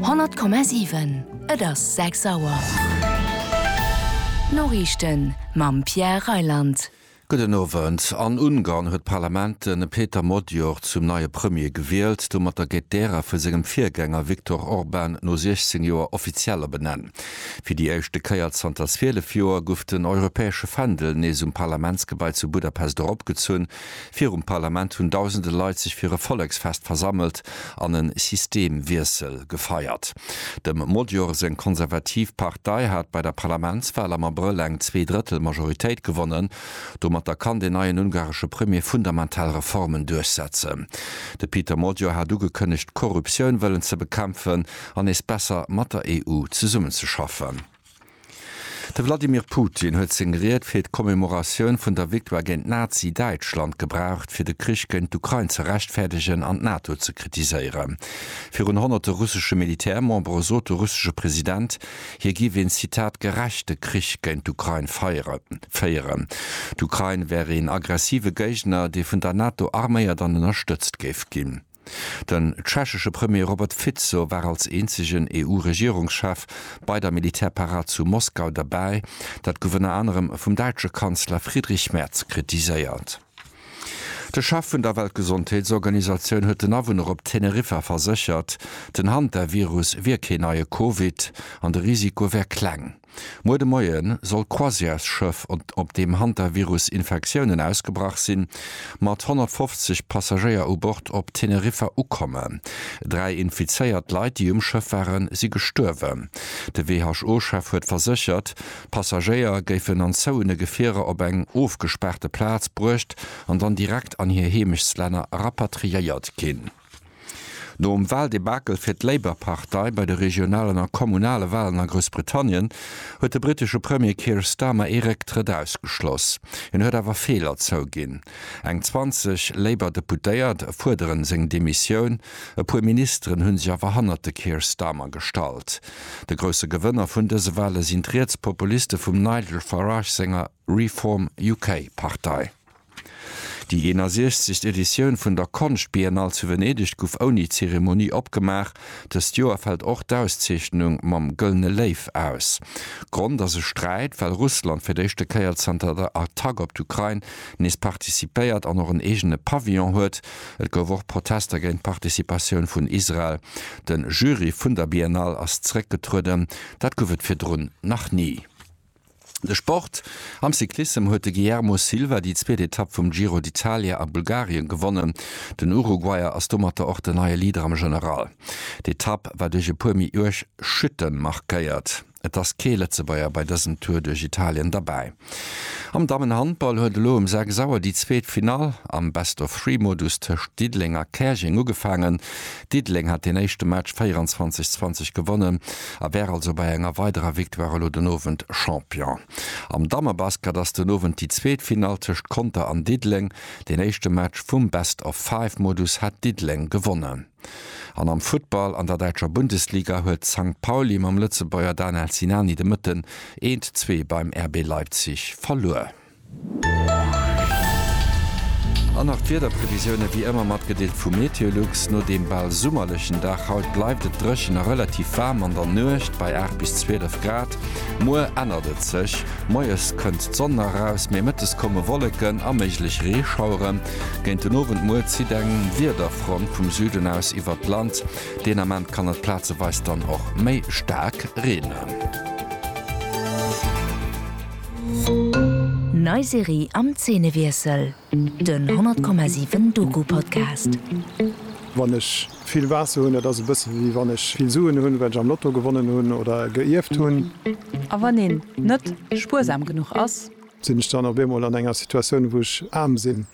100,7 Et ass 6 Auer. D'Noriichten mam Pierre Reyland. Gudden Owend. An Ungarn huet d'Parlament de Peter Magyar zum neie Premier gewielt. Domatter gétt d'Ära vu sengem Virgänger Viktor Orban no 16 Joer offiziell ebenenn. Fir déi éischte Kéier zanter 12 Joer guff den europäesche Fändel nees um Parlamentsgebai zu Budapest eropgezunn. Virum Parlament hunn dausende Leit sech fir e Volleksfest versammelt an e Systemwiessel gefeiert. Dem Modior seng konservativ Partei hat bei der Parlamentswal am Abrëll eng zwee Drëttel Majoritéit gewonnen. Domatter kann den neien ungaresche Premier fundamental Reformen duerchsetzen. De Peter Modior hat ugekënnegt, d'Korruptioun wëllen ze bekämpfen an nees besser mat der EU zesummenzeschaffen. De Vladimir Putin huet seng Ried fir d'Commemoratioun vun der Victoire géint Nazi-Däitschland gebraucht, fir de Krich géint d'Ukrain ze rechtfäerdegen an d'NATO ze kritiséieren. Virun honnerte russesche Militärmembere sot de russesche President, hie giff een Zitat gerechte Krich géint d'Ukrain féieren. D'Ukrain wär een aggressive Géigner, dee vun der NATO arméiert an ënnerstëtzt géif ginn. Den tschechesche Premier Robert Fico war als eenzegen EU-Regierungschef bei der Militärparad zu Moskau derbäi, dat gouf ënner anerem vum däitsche Kanzler Friedrich Merz kritiséiert. De Chef vun der Weltgesondheetsorganisatioun huet den Awunner op Teneriffa verséchert, den Hantavirus wier keen neie Covid an de Risiko wär kleng. Muer de Moie soll d'Croisièresschëff, op deem Hantavirus Infektiounen ausgebrach sinn, mat 150 Passagéier u Bord op Teneriffa ukommen. Dräi infizéiert Leit, déi um Schëff waren, si gestuerwen. De WHO-Chef huet verséchert, d'Passagéier géifen an zouene Gefierer op eng ofgespaarte Plaz bruecht an dann direkt an hir Heemechtslänner rapatriéiert ginn. Nom Wahldebakel fir d'Labour-Partei bei de regionalen a kommunale Wahlen a Groussbritannien huet de brittesche Premier Keir Starmer ee Récktrëtt ausgeschloss. Hien huet awer Feeler zouginn. Eng 20 Labour-Deputéiert fuerderen seng Demissioun, e puer Ministeren hu sech awer hannert de Keir Starmer gestallt. De grousse Gewënner vun dëse Wahle sinn d'Rietspopuliste vum Nigel Farage senger Reform UK-Partei. Déi 61. Editioun vun der Konschtbiennale zu Venedeg gouf ouni Zeremonie opgemaach. Dëst Joer fält och d'Auszeechnung mam Gëllene Léiw aus. Grond ass e Sträit, well Russland fir d'éischte Kéier zanter der Attack op d'Ukrain nees participéiert an och en eegene Pavillon huet. Et gouf och Protester géint d'Participatioun vun Israel. De Jury vun der Biennale ass zeréckgetrueden, dat gouf et virdrun nach ni. De Sport, Am Cyclissem huet de Guillermo Silva déi zweet Etapp vum Giro d'Italia a Bulgarien gewonnen. Den Uruguayer ass domatter och den neie Leader am General. D'Etapp war duerch e puer méi uerg Chutten markéiert. Et ass kee Lëtzebuerger bei dësem Tour duerch Italien derbäi. Am Dammenhandball huet elo um 6 Auer déi zweet Finall am Best-of-Three-Modus tëscht Diddeleng a Käerjeng ugefaangen. Diddeleng hat deen éischte Match 24, 20 gewonnen a wär also bei enger weiderer Victoire elo den Owend Champion. Am Dammebasket ass den Owend déi zweet Finall tëscht Conter an Diddeleng. Deen éischte Match vum Best of Five Modus hat Diddeleng gewonnen. An am Futtball an der däitscher Bundesliga huet Sankt Pauli mam Lëtzebuerger Danel Sinani de Mëtten eent zwee beim RB Leipzig verluer. An nach d'Wiederprevisioune wéi ëmmer matgedeelt vu Meteolux. No deem bal summerlechen Dag haut bleift et dréchen a relativ waarm an der Nuecht bei 8 bis 12 Grad. Muer ännert et sech, moies kënnt d'Sonn nach eraus, mee mëttes komme Wolleken a méiglech Reeschauere géint den Owend. Muer zitt eng Wiederfront vum Süden aus iwwert d'Land, deen Ament kann et plazeweis dann och méi staark reenen. Nei Serie am Zeenewiessel, den 100,7 Doku Podcast. Wann ech vill Waasser hunn, dat ass e bësse wéi wann ech vill Suen hunn, well ech am Lotto gewonnen hunn oder geierft hunn. A wann een net spuersam genuch ass? Sinn ech dann op eemol an enger Situatioun, wou ech aarm sinn?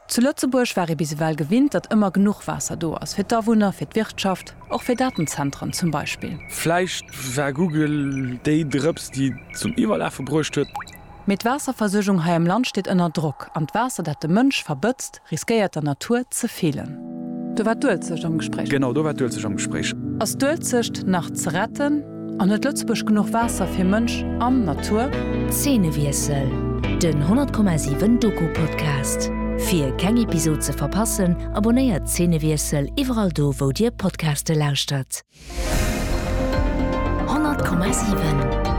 Zu Lëtzebuerg war ee bis ewell gewinnt, datt ëmmer genuch Waasser do ass, fir d'Awunner, fir d'Wirtschaft, och fir Datenzentren zum Beispill. Vläicht war Google déi Drëps, déi et zum Iwwerlafe bruecht huet. Mee d'Waasserversuergung hei am Land steet ënner Drock, an d'Waasser, dat de Mënsch verbëtzt, riskéiert der Natur ze feelen. Do war d'Uelzecht am Gespréich. Genau, do war d'Uelzecht am Gespréich. Ass d'Uelzecht nach ze retten? An huet Lëtzebuerg genuch Waasser fir Mënsch an Natur? Zeenewiessel, Den 100,7 Doku Podcast. Fir keng Episod ze verpassen, abonnéiert Zeenewiessel iwwerall do wou dir Podcaste lauschtert. 100,7.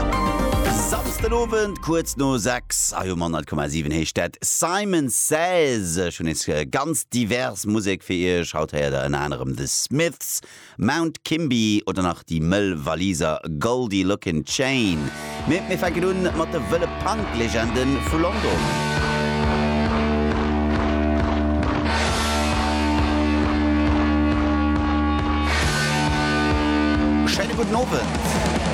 Samsden Owend kuerz no 6 hei um 100,7 heescht dat Simon Says. Ech hunn nees ganz divers Musek fir iech. Haut héiert der ënner anerem The Smiths, Mount Kimby oder nach déi mëll Waliser Goldie Lookin Chain. Mee mir fänken un mat de wëlle Punk-Legende vu London. Schéine gudden Owend.